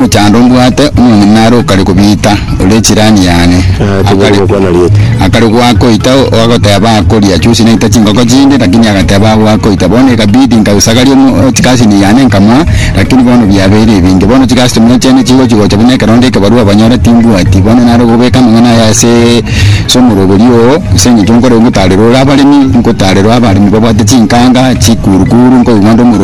Omochando mbwate omong'ina are okare kobiita, ore chirani yane. Aye tobori gokwana rieta. Akare goakoita agoteba akoria chiosi naita chingoko chinde lakini agateba agoakoita bono ekabidi nkausagaria omo chikasini yane nkamoa lakini bono biabeire ebinge bono chikastomer chiane chigochi gocha buna ekerondo ekebarua banyora timbwati bono nare gobeka amang'ana aya ase ase omorobori oo ase engencho nkore ngotarerore abaremi nkotarerore abaremi babwate chinkanga chikurukuru nkoigwa nde omoro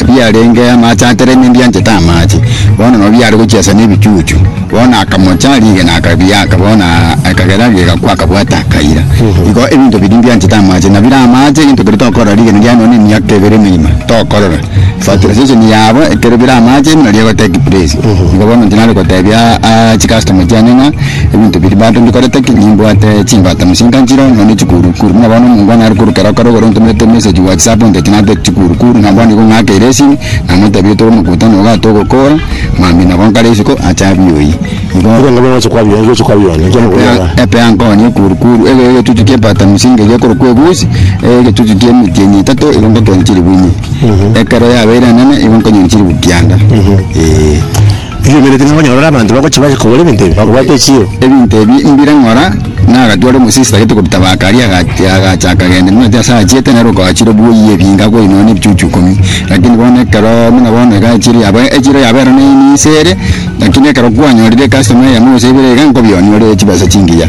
Ebiarenge amache a tereme mbianchete amache, bono nabio biare gochia ase nebichuchu. Bono akamocha rigena akabiaka, bono ekagera rigakwa akabwata akaira. Igo ebinto biria mbianchete amache, nabire amache egento keria tokorora rigena riaye nonya emiaka ebere emerima tokorora. Fertilization yabo ekero bire amache buna rigotekipresi. Igo bono inche nare gotebia chikastoma chiane ng'a. Ebinto biria bato mbikorete ki? Nimbwate chimbata mosinto nchire onye one chikuurukuru. Buna bono omongwana are korukera okare ogoro ntomerete emessage whatsapp onteti nampete chikuurukuru na bono igo ng'akeire esimi namotebirie tore omokuuta na ogato ogokoora mambia nabo nkare isiko ache abioyi. Igo Igo nabwo ngocha kwabia ngocha kwabia one ekiagera Epe ya- okoyara. epe yankoonia ekuurukuru ege egechuchu kia ebata mosinto eria ekorokwa egusi egechuchu kia emetienyi etato igo ngokeena chiribu ime. Ekero yabeire enene igo nkonyoria chiribu kianda. Eeh. Riromereti ng'a onyorore abanto bagochia bache kogora ebinto ebi, bakobwate echiiro. Ebinto ebi mbire ng'ora? Na agatwara emosio esitagete kobita baka aria, agatia, agacha, akagenda, nimanyete ase achiete, nere okaachire buoyia ebinga akoinwa nebichuchu ikomi. Lakini bono ekero, buna bono iga echiiro yabo, echiiro yabo ero ney'enyinyi inse ere, lakini ekero kwanyorire ecustomere eyemo gose ibere iga, nkobi onyore chibesa chingiya.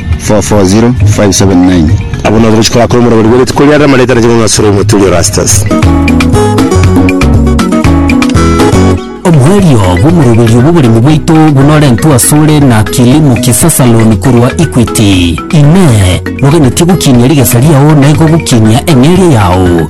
440579. Abwo nabo gochia korakora omorabori bwe rituko riarire amarieta na ching'ong'o asore omoturi Erastus. Oboerio bw'omoroberio bw'oboremi bwaito bunorentwe asore na Kilimo Kisasa Loan korwa Equity. Inee! Noganetie gokinia rigesa riao na igo gokinia eng'eria yao?